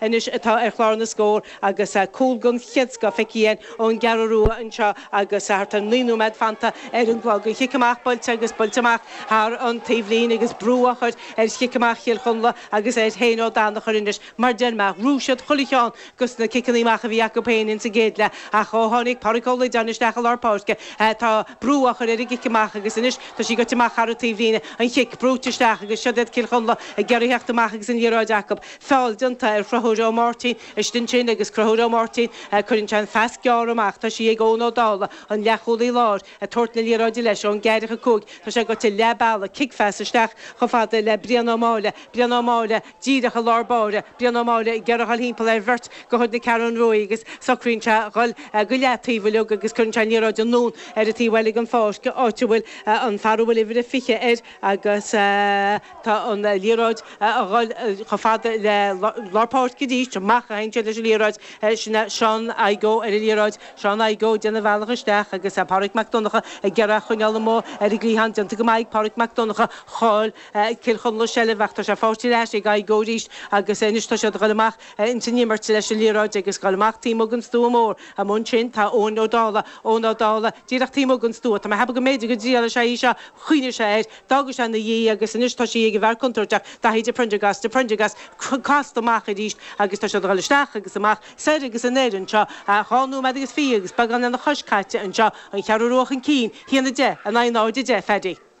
Anois atá ar chlár na scór agus cúl den chéad scoth feicthe againn ón gCeathrú Rua anseo agus thart ar naoi nóiméad fanta ar an gclog. An chic amach buailte agus buailte amach thar an taobhlíne agus brú á chur ar chic amach Chill Chonla agus ar Shane Ó Danachair anois mar deireanach. Rug siad chuile cheann go sna ciceanna amach a bhí acu féin ins an gcéad leath ach ó tháinig Páraic Ó Loideáin isteach i lár páirce tá brú á chur ar an gcic amach agus anois tá sí goite amach thar an taobhlíne. An chic brúite isteach agus siod iad Cill Chonla ag iarraidh theacht amach agus an liathróid acu. feall déanta ar Chruthúir Ó Máirtín. Ansin sin agus Cruthúir Ó Máirtín cuireann sé an phas gearr amach, tá sí ag Eoin Ó Dála, an leathchúlaí láir, a' tabhairt na liathróide leis ón gceathracha cúig, tá sé goite leath bealaigh, cic phas isteach chomh fada le Brian Ó Máille, Brian Ó Máille díreach i lár báire, Brian Ó Máille ag iarraidh dhul thimpeall ar bheirt de chuid na Ceathrún Rua agus socraíonn sé dhul go leataobh uileag agus cuireann sé an liathróid anonn ar an taobh eile den pháirc, áit a bhfuil an fear a bhfuil uimhir a fiche air, Agus tá an liathróid a dhul chomh fada le lár páirce arís, amach a théann sé leis an liathróid, sin é Seán Thaidhg Ó ar an liathróid, Seán Thaidhg Ó déanamh a bhealach isteach agus Pádraig Mac Donncha ag iarraidh a choinneáil amuigh ar an gcliathán, déanta go maith ag Pádraig Mac Donncha, chaill Cill Chonla seilbh ach tá sé fáighte ar ais ag Thaidhg Ó arís agus anois tá siad a dhul amach Ins an imirt leis an liathróid ag goil amach taobh amuigh den stua mór. Amuigh ansin tá Eoin Ó Dála. Eoin Ó Dála, díreach taobh amuigh den stua. Tá mé a cheapadh go mb'fhéidir go dtriailfidh sé í seo. Chuimhnigh sé air. D'fhága sé ina dhiaidh agus anois tá sí ag an bhfear contúirteach, Daithí de Priondargás, de Priondargás, casta amach arís agus tá siad ag dhul isteach agus amach, soir agus anoir anseo, dhá nóiméad agus fiche agus beagán lena chois caite anseo, an Cheathrú Rua chun cinn, haon a deich in aghaidh náid a deich, a Pheaidí.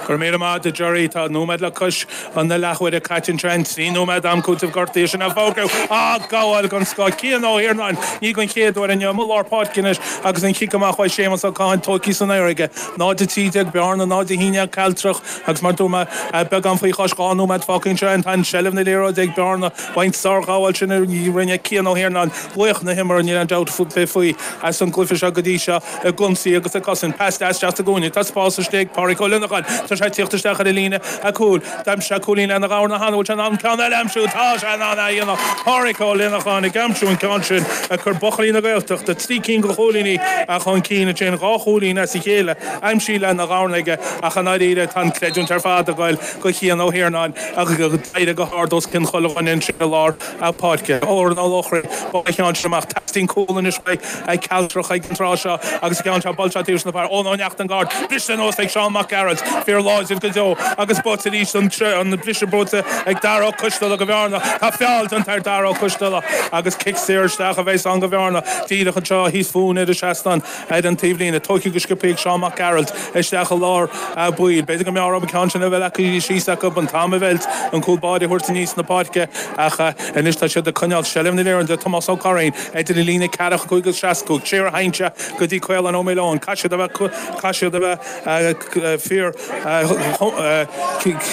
Go raibh míle maith agat Gerry. Tá nóiméad le cois na leathuaire caite anseo. An trí nóiméad d'am cúitimh gortaithe sin a fógraíodh. Á gabháil den scoth. Cian Ó hIarnáin, ní den chéad uair inniu, i lár páirce anois agus an chic amach uaidh Séamas Ó Catháin, tóigthe san aer aige. 0-13 Bearna, 0-11 ag Cealtrach agus, mar a dúirt mé, beagán faoi chois dhá nóiméad fágtha anseo. Tá an seilbh na liathróide ag Bearna. B'in sárghabháil sin a rinne Cian Ó hIarnáin. Laoch na himeartha, níl aon dabht ar bith faoi, as an gcluiche seo go dtí seo. Ag ionsaí agus ag cosaint, pas deas isteach sa gcúinne, tá spás istigh ag Pádraic Ó Lionnacháin, tá sé ag tíocht isteach ar an líne chúil, d'aimsigh sé cúilín lena dhorn cheana, an bhfuil sé in ann ceann eile a aimsiú, tá sé in ann é a dhéanamh, Pádraic Ó Lionnacháin ag aimsiú an ceann sin ag cur buachaillí na Gaeltachta trí cinn go chúilíní chun cinn, ansin dhá chúilín as a chéile aimsithe lena dhorn aige, ach i ndáiríre tá an creidiúint ar fad ag dul go Chian Ó hIarnáin a d'éirigh go hard os cionn chuile dhuine ansin i lár na páirce, Odhrán Ó Lochrainn, bhuail an ceann sin amach. Teastaíonn cúl anois uaidh an gCealtrach ag an tráth seo agus an ceann seo buailte taobh istigh den bhfear. Eoin Ó Neachtain, go hard, briste anuas ag Seán Mac Gearailt, fear láidir go deo agus buaite arís, an briseadh buaite ag Dara Ó Coisteala go Bhearna. Tá feall déanta ar Dhara Ó Coisteala agus cic saor isteach a bheas ann go Bhearna díreach anseo thíos fúinn ar an seastán. Ar an taobhlíne, tógtha go sciobtha ag Seán Mac Gearailt, isteach i lár baill. B'fhéidir go mb'fhearr dóibh an ceann sin a bheith leagtha síos acu, an t-am a mheilt, an cúl báire a thabhairt aníos na páirce, ach anois tá siad ag coinneáil seilbh na liathróide, Tomás Ó Curraoin, idir an líne ceathracha cúig, seasca cúig, siar a théann sí go dtí Caolán Ó Maoileoin, caithfidh siad a bheith, caithfidh siad a bheith fíor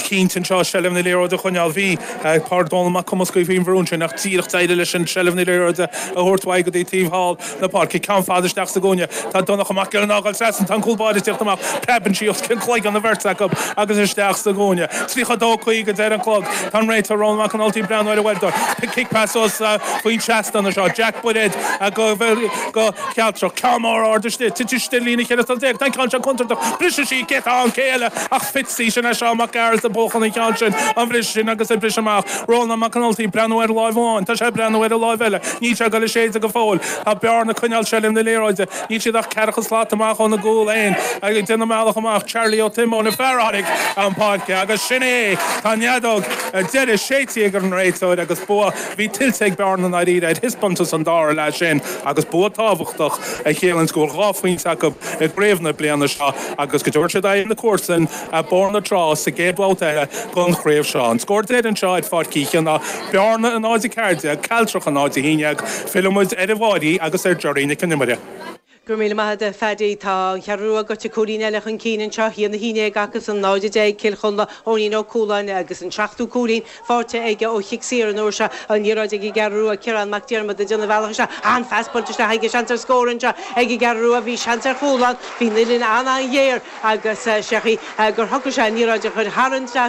chinnte anseo seilbh na liathróide a choinneáil. Bhí Pádraig Dónal Mac Cumascaigh faoi an-bhrú ansin ach díreach d'éirigh leisean seilbh na liathróide a thabhairt uaidh go dtí taobh thall, na páirce, ceann fada isteach sa gcúinne. Tá Donncha Mac Giolla ag gabháil trasna, tá an cúl báire ag teacht amach, preabann sí os cionn chloigeann an bheirt acu agus isteach sa gcúinne. Tríocha a dó caoga a deir an clog. Tá an réiteoir Rónán Mac an Ultaigh ag breathnú ar a uaireadóir. Cic pas os a faoin seastán anseo. Jack Bairéad do Chealtrach. Ceann mór ard istigh. Titeann sí ar líne cheithre slat déag. Tá an ceann seo contúirteach. Briseann sí, cé atá ann? Cé eile ach Fitzy! Sin é Seán Mac Gearailt a bhuachan an ceann sin. An briseadh sin agus ag briseadh amach. Rónán Mac an Ultaigh ag breathnú ar láimh amháin. Tá sé ag breathnú ar an láimh eile. Níl sé ag dul á séideadh go fóill, tá Bearna ag coinneáil seilbh na liathróide, níl siad ach ceathracha slat amach óna gcúl féin ach ag déanamh a mbealach amach, Charlie Ó Tiomáin an fear a tháinig chun páirce agus sin é! Tá an fheadóg ar deireadh séidte ag an réiteoir agus bua a bhí tuillte ag Bearna i ndáiríre ar thaispeántas an dára leath sin agus bua tábhachtach a chiallaíonns go bhfuil dhá phointe acu i gcraobh na bliana seo agus go dtabharfaidh siad aghaidh ar na comharsain Bóthar na Trá sa gcéad bhabhta eile den chraobh seo. An scór deiridh anseo ar Pháirc Uí Chionnaith, Bearna náid a ceathair déag, Cealtrach náid a haon dhéag. Fillfidh muid ar an Mháirí agus ar Giorraí na Cinnimire. Go raibh míle maith agat, Phaddy. Tá an Cheathrú Rua gaibhte cúilín eile chun cinn anseo, a haon a haon déag acusan, náid a deich ag Cill Chonla, Eoinín Ó Cualáin agus an seachtú cúilín, faighte aige ó chic saor an uair seo, an liathróid ag an gCeathrú Rua, Ciarán Mac Diarmada, ag déanamh a bhealach isteach, an-phas buailte isteach aige, seans ar scór anseo ag an gCeathrú Rua, bhí seans ar chúl ann, bhí an uillinn an-an-ghéar agus, is dócha, gur shocraigh sé an liathróid a chur thar an